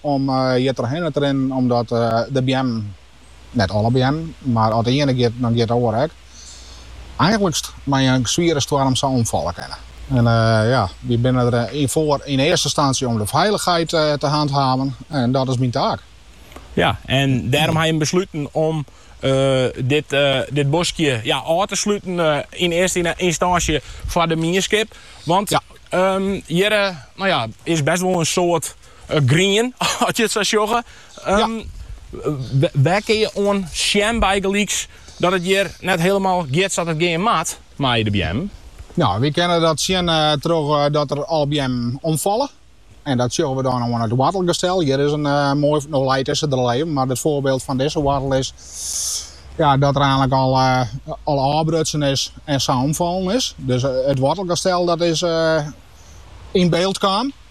Om hjir trochhinne te rinnen omdat de beammen, net alle beammen, mar as der iene giet, dan giet de oare ek, eigentlykst mei in swiere stoarm sa omfalle kinne. En ja, wy binne der foar yn earste ynstantsje om de feilichheid te hanthaven en dat is myn taak. Ja, en dêrom ha je besluten om dit boskje ôf te sluten yn earste ynstânsje foar de mienskip, want hjir is best wol in soad Grien, as je it sa sjogge. Wêr kin je oan sjen bygelyks dat it hjir net hielemaal giet sa't it gean moat mei de beammen? Nou, wy kinne dat sjen troch dat der al beammen omfalle. En dat sjogge we dan oan it woartelgestel. Hjir is in moai, no leit dizze der al even, mar it foarbyld fan dizze woartel is dat er eintlik al ôfbrutsen is en sa omfallen is. Dus it woartelgestel dat is yn byld kaam.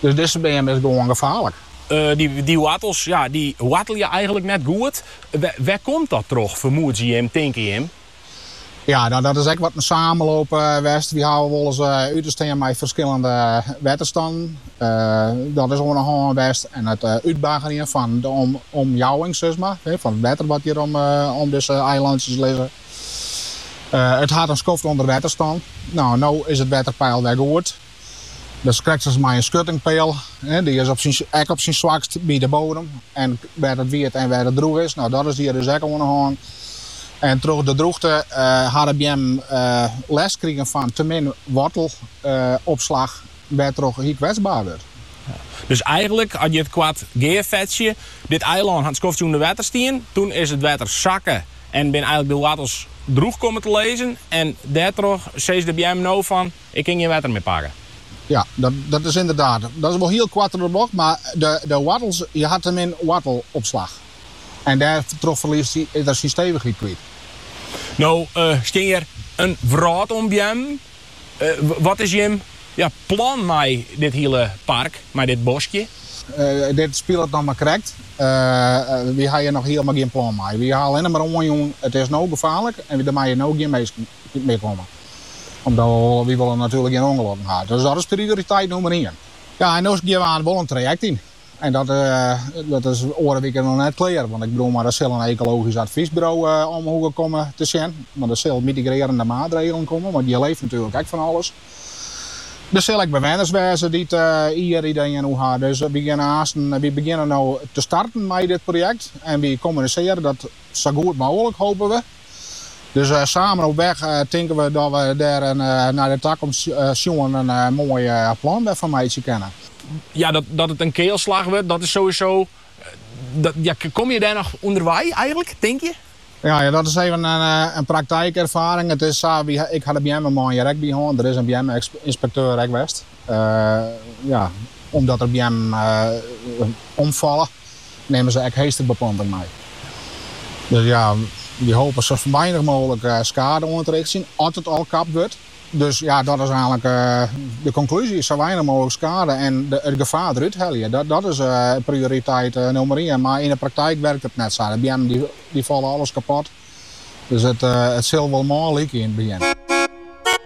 Dus dizze beam is gewoan gefaarlik. Dy woartels woartelje eigenlik net goed. Wêr komt dat troch, fermoedzje jim, tinke jim? Ja, nou dat is ek wat in samenloop west. Wy hawwe wolris út te stean mei ferskillende wetterstannen. Dat is oan de hân west en it útbaggerjen fan de omjouwing, sis mar, fan it wetter wat hjir om dizze eilantsjes lizze. It hat in skoft ûnder wetter stien. Nou, no is it wetterpeil wer goed. Dat is krekt as mei in skuttingpeal. Dy is op syn, ek op syn swakst by de bodem en wêr't it wiet en wêr't it drûch is. No, dat is hjir dus ek oan de hân. En troch de drûchte eh, ha de beammen eh, lêst krigen fan te min woartelopslach, eh, wêrtroch hy kwetsbaar wurdt. Dus eigenlik, as je it koart gearfetsje, dit eilân hat skoftsje ûnder wetter stien, toen is it wetter sakke en binne eigenlik de woartels drûch kommen te lizzen en dêrtroch sizze de beammen no fan, Ik kin gjin wetter mear pakke. Ja, dat is ynderdaad. Dat is wol hiel koart troch de bocht, mar de woartels, hy hat te min woartelopslach. En dêrtroch ferliest er syn stevichheid kwyt. No stean hjir in wrâld oan beammen. Wat is jim plan mei dit hiele park, mei dit boskje? Dit spilet noch mar krekt. Wy ha hjir noch hielendal gjin plan mei. Wy ha allinne mar oanjûn, it is no gefaarlik en der meie no gjin minsken. mear komme. Omdat wy wolle natuerlik gjin ûngelokken ha. Dus dat is prioriteit nûmer ien. Ja, en no gean we wol in trajekt yn. En dat is oare wike noch net klear. Want ik bedoel mar, der sil in ekologysk advysburo om hoege komme te sjen. Want der sille mitigrearjende maatregelen komme, want hjir leeft natuerlik ek fan alles. Der sille ek bewenners wêze dy't hjir ideeën oer ha. Dus wy gean aansten. Wy begjinne no te starten mei dit projekt en wy kommunisearje dat sa goed mooglik, hope we. Dus samen op weg tinken we dat we dêr nei de takomst sjoen der in moai plan fan meitsje kinne. Ja, dat it in kealslach wurdt, dat is sowieso. Ja, komme je dêr noch ûnder wei eigentlik, tink je? Ja, dat is even in praktykûnderfining. It is sa, ik ha de beammen mei hjir ek by hân. Der is in beamme-ynspekteur ek west. ja, omdat der beammen omfalle, nimme se ek heesterbeplanting mei. Dus ja, wy hoopje sa weinich mooglik skade oan te rjochtsjen sjen, as it al kapt wurdt. Dus ja, dat is einlik de konklúzje. Sa weinich mooglik skade en de, it gefaar derút helje. Dat, dat is uh, prioriteit uh, nummer 1. Mar yn de praktyk wurket it net sa. De beammen dy, dy falle alles kapot. Dus it, uh, it sil wol moai lykje yn it begjin.